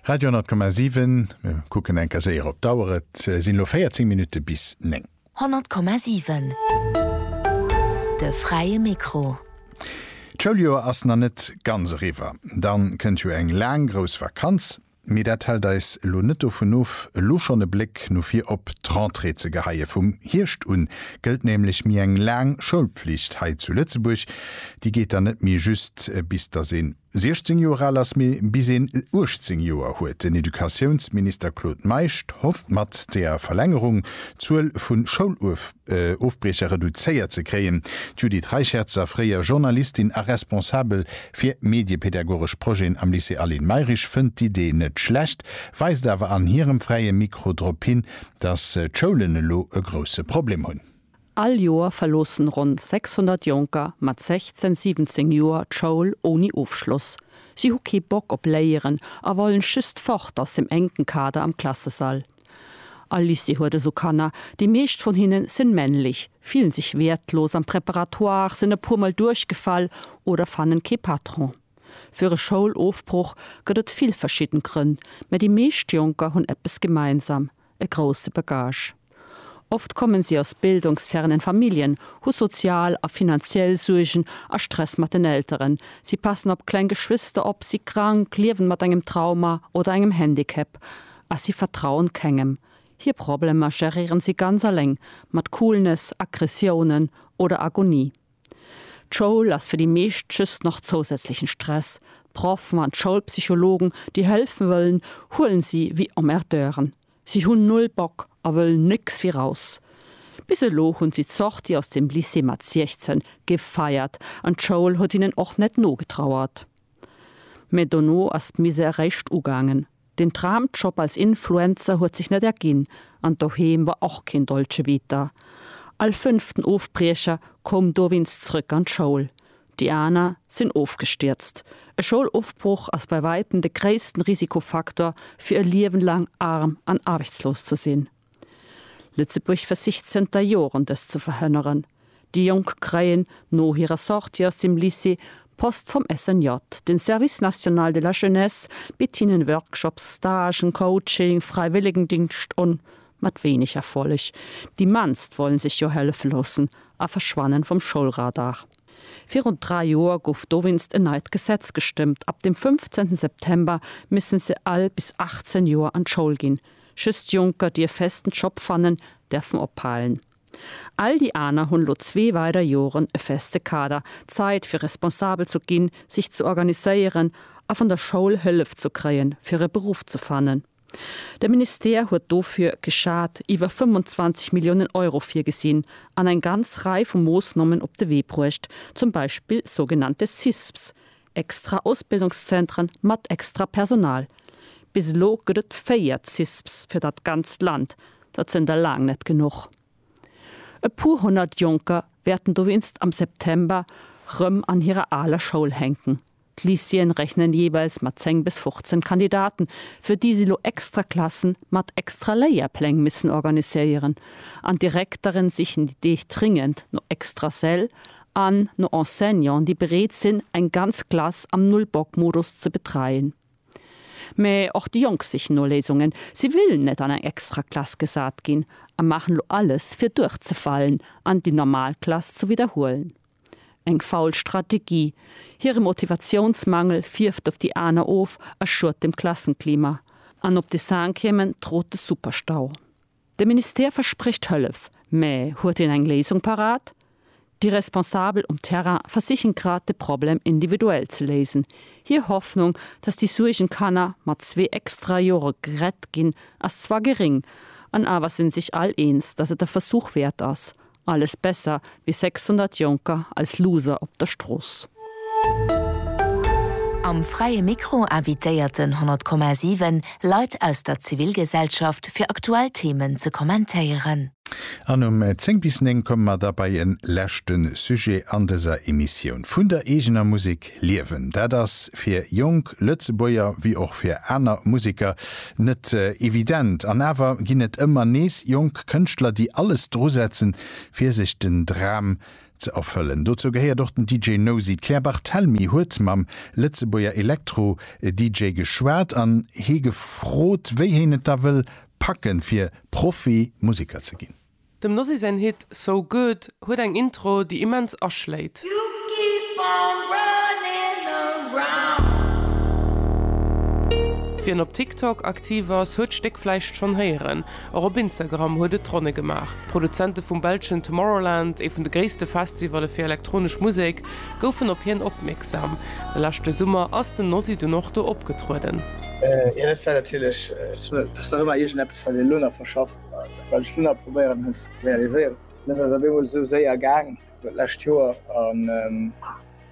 Radio 10,7, Mir kucken eng Kéier séier op d'Auer, et sinn elo 14 Minutte bis 9. 100,7, De fräie Mikro. D'Schouljoer ass nach net ganz eriwwer, da kënnt jo eng laang grouss Vakanz. Mee dat hält eis elo net dovun of, elo schonn e Bléck no vir op d'Rentrée ze geheie. Vum Hierscht un gëllt nämlech méi eng laang Schoulpflicht hei zu Lëtzebuerg, Déi geet dann net méi just bis datt een 16 Joer al ass, mee bis een 18 Joer huet. Den Educatiounsminister Claude Meisch hofft mat der Verlängerung d'Zuel vu Schoulofbriecher reduzéiert ze kréien. D'Judith Reicherzer, fréier Journalistin a Responsabel fir mediepedagogesch Projeten am Lycée Aline Mayrisch, fënnt d'Idee net schlecht, weist awer an hirem Fräie Mikro drop hin, datt d'Schoulen elo e grousse Problem hunn. All Joer verloossen ronn 600 Jonker mat 16, 17 Joer d'Schoul ouni Ofschloss. Si hu kee Bock op Léieren a wollen just fort aus dem enken Kader am Klassesall. All Lycée huet esou Kanner, déi meescht vun hinnen sen männlich, fillen sech wertlos am Préparatoire, sen e puer mol duerchgefall oder fannen kee Patron. Für e Schoulofbruch gëtt et vill verschidden Grënn, mä déi meescht Jonker hunn eppes gemeinsam, e grousse Bagage. Oft kommen si aus bildungsfernen Familljen, hu sozial a finanziell Suergen a Stress mat den Elteren, si passen op kleng Geschwister op, si krank, liewen mat engem Trauma oder engem Handicap a si vertrauen kengem. Hir Problemer geréieren si ganz aleng, mat Coolness, Aggressiounen oder Agonie. D'Schoul ass fir déi meescht just nach zousätzlechen Stress. D'Proffen an d'Schoulpsychologen, déi hëlfen wëllen, huelen si wéi Emmerdeuren. Si hunn null Bock a wëllen nécks wéi raus. Bis elo hunn si d'Sortie aus dem Lycée mat 16 gefeiert an d'Schoul huet hinnen och net nogetrauert. Mä dono ass d'Misère réischt ugaangen. Den Traumjob als Influencer huet sech net erginn an doheem war och keen Dolce Vita. All fënnften Ofbriecher koum dowéinst zrëck an d'Schoul, déi aner sinn ofgestierzt. E Schoulofbroch ass bei wäitem de gréissten Risikofaktor fir e Liewen laang arm an aarbechtslos ze sinn. Lëtzebuerg versicht zënter Joren dëst ze verhënneren. Déi Jonk kréien no hirer Sortie aus dem Lycée Post vum SNJ. Den Service National de la Jeunesse bitt hinnen Workshops, Stagen, Coaching, Fräiwëllegendingscht un, mat wéineg Erfolleg. Déi mannst wollen sech jo hëllefe loossen a verschwannen vum Schoulradar. Virun 3 Joer gouf dowéinst en neit Gesetz gestëmmt, ab dem 15 September missen se all bis 18 Joer an d'Schoul ginn. Just Jonker dierf festen Job fannen, därfen ophalen. All déi aner hunn lo zwee weider Joren e feste Kader, Zait fir responsabel zu ginn, sich ze organiséieren a van der Schoul Hëllef zu kréien fir e Beruff ze fannen. De Ministère huet dofir geschaat iwwer 25 Milliounen Euro virgesinn an eng ganz Rei vu Moossnommen op de Wee bruecht, zum Beispill sougenannte CISPs, Extra Ausbildungszentren mat extra Personal, bis elo gëtt et 4 CISPs fir dat ganzt Land, dat sënn der laang net genuch. E puer honnert Jonker wäerten dowéinst am September rëm an hirer aler Schoul hänken. D'Lycéeën rechnen jeeweils mat 10 bis 15 Kandidaten, fir déi si lo extra Klassen mat extra Léierpläng missen organiséieren. An d'Direktere sichen déi Deeg dringend no extra Säll an no Enseignanten, déi bereet sinn, eng ganz Klass am Null-Bock-Modus ze betreien. Mä och déi Jonk sichen no Léisungen. Si wëllen net an eng extra Klass gesat ginn a maachen elo alles, fir duerchzefalen an déi normal Klass ze widderhuelen. Eng faul Strategie. Hire Motivatiounsmangel fierft op déi aner of a schuet dem Klassenklima. An op de Cinquièmen trot de Superstau. De Ministère versprécht Hëllef, mä huet en eng Léisung parat? Déi Responsabel um Terrain versichen grad de Problem individuell ze léisen. Hir Hoffnung, datt déi Suergenkanner mat zwee extra Jore gerett ginn, ass zwar geréng, an awer sinn sech all eens, datt et e Versuch wäert ass, Alles besser wéi 600 Jonker als Loser op der Strooss. Am Fräie Mikro invitéiert den 100,7 Leit aus der Zivilgesellschaft fir aktuell Themen ze kommentéieren. An um 10 bis 9 komme mer da bei en leschte Sujet an dëser Emissioun vun der eegener Musek. Liewen. Dat ass fir jonk Lëtzebuerger wéi och fir aner Museker net evident. An awer ginn et ëmmer nees jonk Kënschtler, déi alles dru setzen, fir sech den Dram ze erfëllen. Dozou gehéiert och den DJ Nosy. D'Claire Barthelmy huet mam Lëtzebuerger Elektro-DJ geschwat an hie gefrot, wéi heen et da wëll packen, fir Profi-Museker ze ginn. Dem Nosy säin Hit So Good huet eng Intro, déi immens aschléit. Wien op TikTok aktiv ass, huet d'Stéck vläicht schonn héieren. Och op Instagram huet et d'Ronne gemaach. D'Produzente vum belschen Tomorrowland, ee vun de gréisste Festivalle fir elektronesch Musek, goufen op hien opmierksam. De leschte Summer ass den Nosy dunn och do opgetrueden. Well ech dunn probéieren hu ze realiséieren. Dat ass op eemol esou séier gaang d'lescht Joer an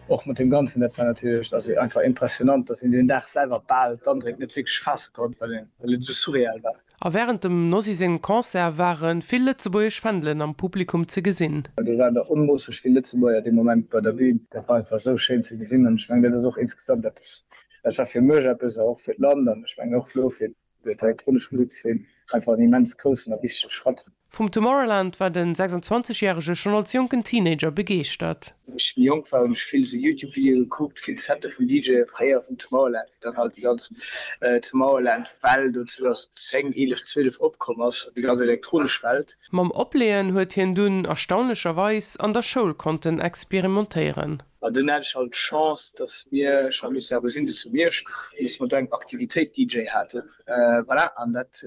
och mat deem Ganzen. Dat war natierlech also einfach impressionant, dass een deen Dag selwer bal d'Andréck net wierklech faasse konnt, well et esou surreal war. A wärend dem Nosy sengem Concert ware vill lëtzebuergesch Fändelen am Publikum ze gesinn. Do waren der onmoosseg vill Lëtzebuerger dee Moment bei der Bün. Dat war einfach esou schéin ze gesinn an ech mengen, dat ass och insgesamt eppes, dat war fir mech eppes a och fir d'Land an ech mengen och elo fir Fir d'elektronesch Musekszeen einfach en immens groussen a wichtege Schratt. Vum Tomorrowland war den 26 järege schonn als jonken Teenager begeeschtert. Wéi ech méi jonk war hunn ech vill esou Youtube-Videoe gekuckt, vill Sette vun DJe fréier vum Tomorrowland, wéi dann halt déi ganz Tomorrowland-Well do 2010, 11, 12 opkomm ass, déi ganz elektronesch Welt. Mam Opleeën huet hien dunn erstaunlecherweis an der Schoul konnten experimentéieren. An dunn hat ech halt d'Chance, dass mir, ech war Minister a Gesindheet zu Miersch, an dass mer do eng Aktivitéit DJ haten. Voilà, an dat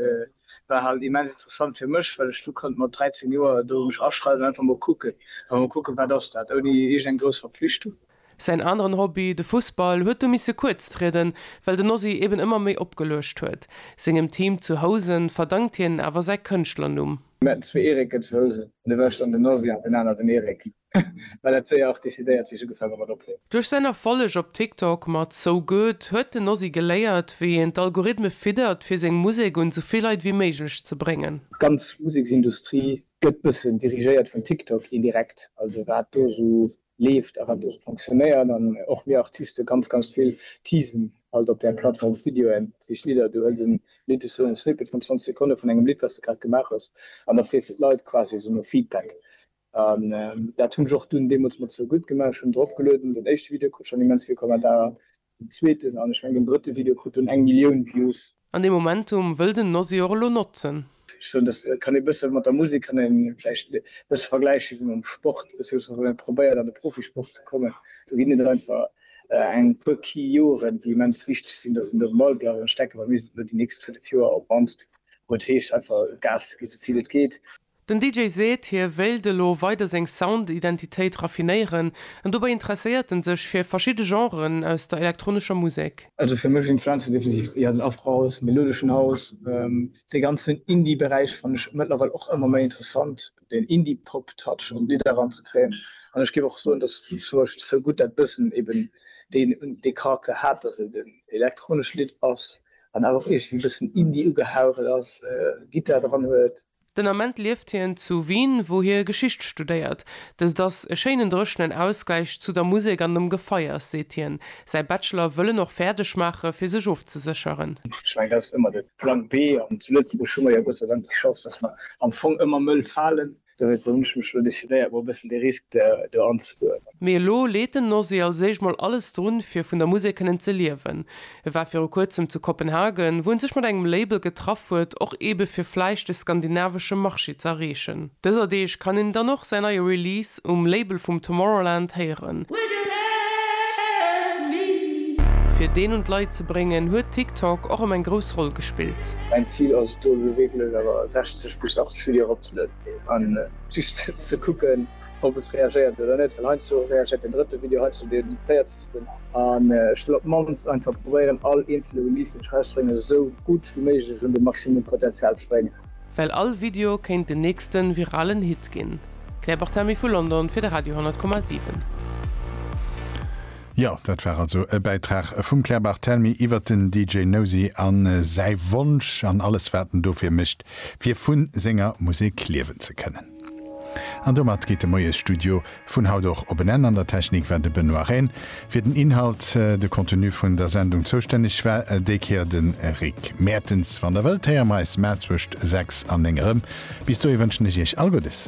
war halt immens interessant fir mech, well ech du konnt mat 13 Joer do mech aschreiwen an einfach mol kucken, einfach mol kucken, wat ass dat, ouni iergend eng grouss Verpflichtung. Säin aneren Hobby, de Fussball, huet du misse kuerz trieden, well den Ozzy eben ëmmer méi opgeluecht huet. Sengem Team zu Housen verdankt hien awer säi Kënschtlernumm. Mir haten zwee Erike zu Housen, an da war ech dann den Ozzy an den aner den Erik. well dat séier och decidéiert wéi ech ugefaang hu mat opnemen. Duerch säin Erfolleg op TikTok mat So Good huet den Ozzy geléiert wéi een d'Algorithme fiddert fir seng Musek un sou vill Leit wéi méiglech ze bréngen. D'ganz Museksindustrie gëtt bëssen dirigéiert vun TikTok indirekt, also wat do esou leeft a wat do esou fonctionnéiert an och mir Artiste ganz ganz vill teasen alt op där Plattform Videoen, dat heescht Lidder, du huels en Lidd, esou en Snippet vun 20 Sekonne vun engem Lidd wat s de grad gemaach hues an da frees de d'Leit quasi esou no Feedback. An dat hunn ech och dunn deemools mat Sou gutt gemaach. Ech hunn drop gelueden. Den éischte Video krut schonn immens vill Kommentarer, den zweeten an ech mengen den drëtte Video krut dunn eng Millioun Views. An dee Momentum wëll den Nosy och elo notzen. Ech soen, dat kann ee bësse mat der Musek kann ee vläicht e bësse vergläiche wéi mam Sport. Ech soen, wann ee probéiert an de Profisport ze kommen, do ginn et einfach eng puer Key Joren, déi immens wichteg sinn, datt een do um Ball bleift. An ech denken, mir sinn elo déi nächst fënnef Joer op mannst, wou et heescht einfach Gas ze ginn, esou vill et geet. Den DJ seet, hie wéilt elo weider seng Sound-Identitéit raffinéieren, an dobäi interesséiert en sech fir verschidde Genren aus der elektronescher Musek. Also fir mech influenze definitiv eher den Afrohouse, melodeschen House. Dee ganzen Indie-Beräich fannen ech mëttlerweil och ëmmer méi interessant, deen Indie-Pop-Touch an d'Lidder eranzekréien. An ech géif och soen, datt Future So Good dat bëssen eben dee Charakter hat, datt et en elektronescht Lidd ass an awer och iergendwéi e bëssen Indie ugehaucht ass, Gittar dran huet. Den Ament lieft hien zu Wien, wou hie Geschicht studéiert. Dëst ass e schéinen dréchenen Ausgläich zu der Musek an dem Gefeiers, seet hien. Säi Bachelor wëll en och fäerdeg maache fir sech ofzesécheren. Ech mengen, dat ass ëmmer de Plan B. An zu Lëtzebuerg hu mer jo Gott sei Dank déi Chance, datt mer am Fong ëmmer Mëll falen. Dowéinst hunn ech mech elo decidéiert, mol e bëssen de Risk do anzegoen. Mee elo leet den Nosy als éischt mol alles drun, fir vun der Musek kënnen ze liewen. E war viru kuerzem zu Kopenhagen, wou en sech mat engem Label getraff huet, och eebe fir vläicht de skandinavesche Marché ze erreechen. Dëser Deeg kann een dann och säin neie Release um Label vum Tomorrowland héieren. Fir deen un d'Leit ze bréngen, huet TikTok och ëm eng grouss Roll gespillt. Mäin Zil ass et do elo wierklech awer 60 bis 80 Videoen eropzelueden an just ze kucken, ob et reagéiert oder net, well heiansdo reagéiert den drëtte Video, heiansdo den véierzegsten an ech wëll op d'mannst einfach probéieren all eenzele Release deen ech erausbréngen esou gutt wéi méiglech un de Maximum Potenzial ze bréngen. Well all Video kéint den nächsten viralen Hit ginn. Claire Barthamy vu London fir de Radio 10,7. Jo, dat war also e Bäitrag vum Claire Barthelmy iwwert den DJ Nosi a säi Wonsch an alles wat en dofir mécht fir vun senger Musek liewen ze kënnen. An domat geet de Moiesstudio vun haut och op en Enn. An der Technik war de Benoît Rehn, fir den Inhalt, de Contenu vun der Sendung zoustänneg war déi Kéier de Rick Mertens. Wann der wëllt, héiere mer eis mar zwëscht 6 an 9 erëm. Bis dohi wënschen ech iech all Guddes.